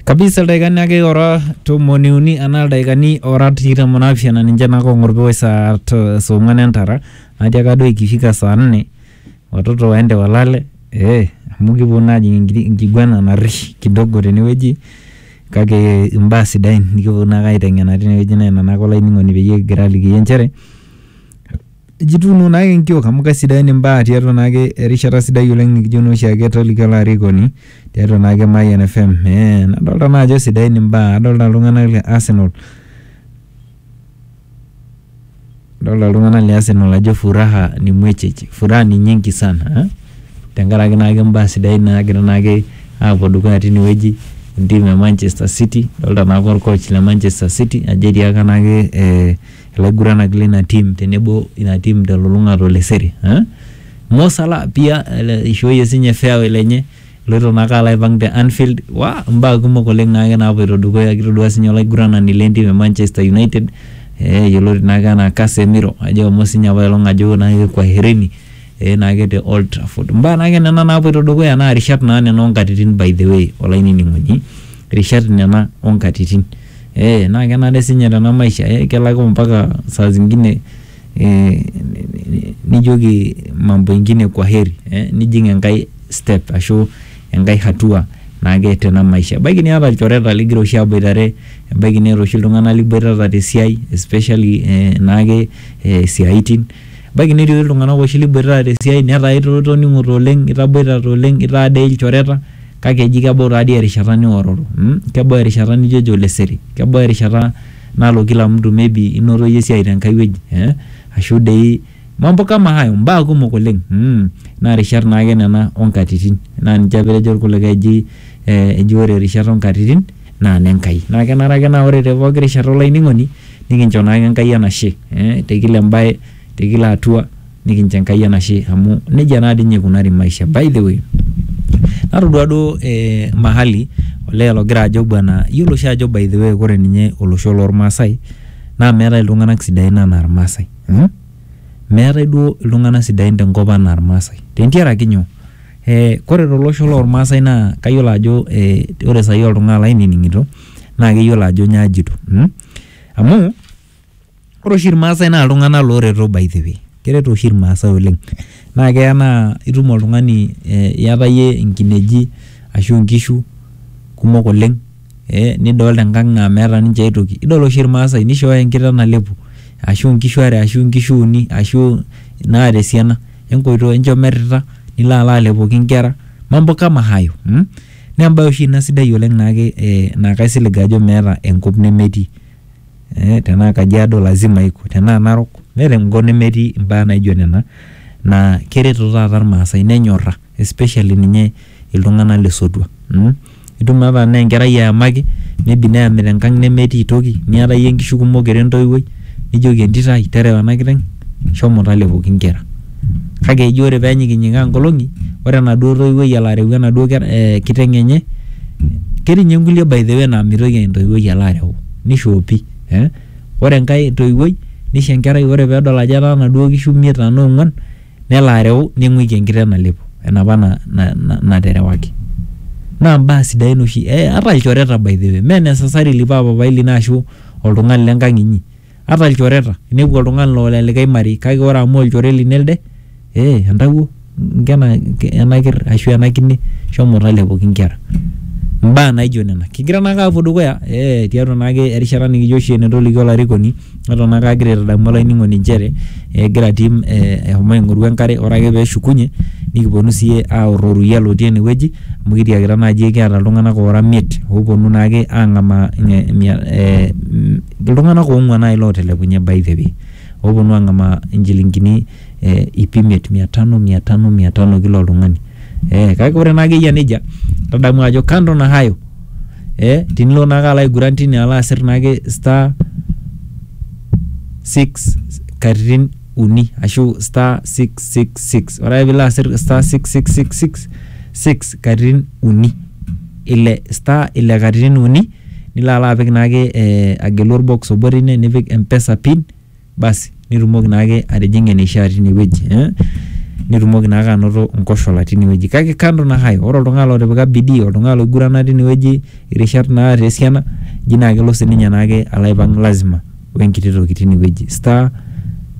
kabisa ildaikani ake ora tomoni uni anaa ildaikani ora tikitam onaapishana ninche naa kong'or piwoi saa to- saa ong'wan entara najo ake duo ikifika saa nne watoto waende walale eh, amu kipuo naa ajing enkiti enkiguana narrish kidogo tenewueji kake imbaa sidain nikiponu naake aiteng'ena tinewueji naa ina naake olainining'oni peyie kigira alikiyie inchere. Jituuno naake nkiok amu kesidain imbaa tiatua naake erishata sidai oleng nikijo nooshi ake toliki olarikoni tiatua naake Mayian FM. Eh, nadolta naa ajo sidain imbaa, adolta iltung'anak le Arsenal adolta iltung'anak le Arsenal ajo furaha ni mwecheche, furaha ni nyingi sana eh? tenkaraki naake imbaa sidain naagira naake aapuo dukuya tinewueji entim e Manchester City, adolta naake olcoach le Manchester City ajo etiaka naake eh Ilaiguranak leina tim tenebo ina tim telulung'ata o Leseri. Mo Salah pia eishooyie sinye fairway lenye eloito naake alo aipang te Anfield. Waa imbaa kumok oleng naake naapuoito dukuya. Kitodua sinye olaiguranani le ntim e Manchester United yioloti naake enaa Casemiro ajo eshomo sinye apailong ajo naake kwaherini naake te Old Trafford. Imbaa naake nena naapuoito dukuya naa irishat naa nena oo nkatitin by the way olainining'oni. Irishat nena oo nkatitin. Ee naa kenare sinye tena maisha ee kelak mpaka saa zingine nijoki mambo ingine kwaheri ee nijing enkae step ashu enkae hatua naake tena maisha. Ebaiki niata ilchoreta ling'ira oshi aboitare, ebaiki niata oshi iltung'anak liboitata te siai especially naake isiaitin, ebaiki netii oshi iltung'anak liboitata te siai netaa itoning'ote oleng', itaboitata oleng', itaa dii ilchoreta. Kake eji kebau taadii erishata niororo mm, kebau erishata nijo ejo Leseri, kebau erishata nalo kila mtu maybe inoto iyie esiai tenkae wueji eh, ashu dei mambo kama hayo, mbaa kumok oleng mm, naa rishat naake nena o nkatitin. Naa ninche apa etejo ilkulikae eji eh, eji ore rishat o nkatitin naa ne Nkai. Naa kenare ake naa ore te pooki rishata olainining'oni nikincho naake Enkai enashe eh, te kila embae, te kila hatua. nikincho Enkai enashe amu nejia naa dii ninye eikunari maisha. By the way, natodua duo eh, mahali olee logira ajo bwana iyiolo oshi ajo by the way ore ninye olosho lormaasai naa meetae iltung'anak sidain anaa irmaasai mm. Meetae duo iltung'anak sidain tenkop anaa irmaasai tentiaraki nyoo? Eh, kore tolosho lormaasai naa kayiolo ajo eh, ore sai oltung'ani lainining'ito naa keyiolo ajo nyoo ajito mm amu Ore oshi irmaasai naa iltung'anak looreto by the way. Kereto oshi irmaasai oleng. Naa keya naa itum oltung'ani iyata iyie inkineji ashu inkishu kumok oleng nidolita enkang naa meeta ninche ae toki. Idol oshi irmaasai nishooyo enkiteng nalepu ashu inkishu are ashu inkishu uni ashu inaata esiana. Enkoitoo enchom irrita nilo alo alepoki inkera. Mambo kama hayo. Naa embae oshi ina sidai oleng naa kaisilig ajo meeta enkop nemetii tenaa kajiado lazima iko tenaa narok meeta enkop nemetii imbaa naijo nena naa kereto taata irmaasay nenyorra especially ninye iltung'anak lesotua mh itum naa tanaa enkerai eyamaki maybe neyami tenkang nemetii toki niata iyie inkishu kumok ira entoiwuoi nijoki entito ai terewa ena kiteng shomo talepo inkera. Kake eji ore pee enyikinyikaa nkolong'i, ore enaduo toiwuoi elo areu enaduo eh kiteng enye, ketii ninye nkulie by the way naa mitoki entoiwuoi alo areu. Nishoopi eh. Ore enkae toiwuoi nisho enkerai ore pee edol ajo etaa inaduo kishu imiet tenaa ong'uan, nelo areu ning'uiki enkiteng nalepo enapa naterewaki. Naa imbaa sidain oshi eh ata ilchoreta by the way mee necessarily paa papaai lino ashu oltung'ani lenkang inyi. Ata lchoreta, inepu oltung'ani lo lelikai marei, kake ore amu olchore lino elde, ee entawuo nkena ena ker ashu ena kine shomo talepoki nkera. Mbaa naijo nena. Kigira naake aapuo dukuya ee tiatua naake erishata nikijo oshi enetolikio olarikoni neton naake agira aitadamu olainining'oni nchere egira atum ee eshomo aing'oru enkare ore ake peeshukunye nikiponu siyie aaorr ororei lotii enewueji amu kitiakita naaji kiata iltung'anak oora imiet oopuonu naake aang'amaa ee mia ee mm. iltung'anak oong'uan naaji lootelekunye by the way ooponu ang'amaa inchilingini eh, ip imiet mia tano mia tano mia tano kila oltung'ani eh, kake ore naa akeyia nejia tadamu ajo kando na hayo eh, tinilo naake alo aiguran tine alo asir naake star 6 katitin uni ashu star 666 ore ake piilo asir star 6666 katitin uni ile star ile katitin uni nilo alo apik naake eh agelu orbox obo tine nipik mpesa pin basi nitumoki naake atijing'a eneishia tinewueji eh nitumoki naake anoto inkoshola tinewueji kake kando na hayo ore oltung'ani lotipika bidii oltung'ani loigurana tinewueji irishat naata esiana eji naa kelo sininye naake alo aipang lazima wenkiti toki tinewueji star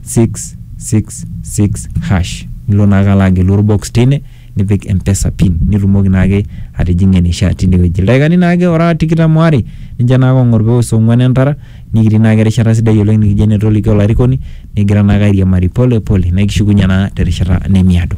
six six six hash nilo naake alo agelu orbox teine. nipik mpesa pin nitumoki naake atijing'ie eneishaa tinewueji ildaikani naake ora tikitam waare ninche naake ong'or peos ong'uan entara nikitii naake erishata sidai oleng nikijo enetolikio olarikoni nikigira naake airiamari pole pole naa ekishukunye naa terishata nemiado.